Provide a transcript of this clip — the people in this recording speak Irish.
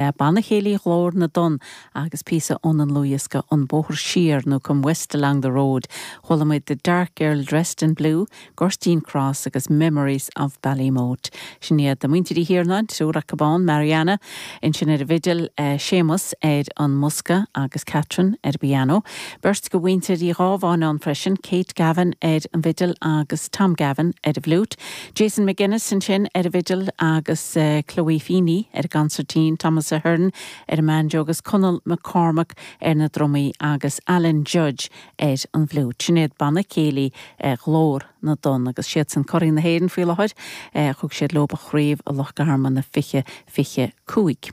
Banna Céilí Ghlór na dTonn agus píosa óna ndlúthdhiosca An Bóthar Siar nó Come West Along the Road chualamid The Dark Girl Dressed in Blue, Gurteen Cross agus Memories of Ballymote. Sin iad Muintir Uí Thiarnáin, triúr acub ann, Marianna, ansin ar an bhfidil, Séamus ar an mbosca agus Catherine ar an bpiano. Beirt de mhuintir Uí Ghábháin ann freisin, Kate Gavin ar an bhfidil agus Tom Gavin ar an bhfliúit. Jason McGuinness ansin ar an bhfidil agus Chloe Feeney ar an gconsairtín, Thomas Ahern ar an mbanjo agus Conall McCormack ar na drumaí agus Alan Judge ar an bhfliúit. Sin iad banna céilí Ghlór na dTonn agus siadsan curaidh na hÉireann faoi láthair. Thug siad leob an chraobh i Loch Garman i 2025.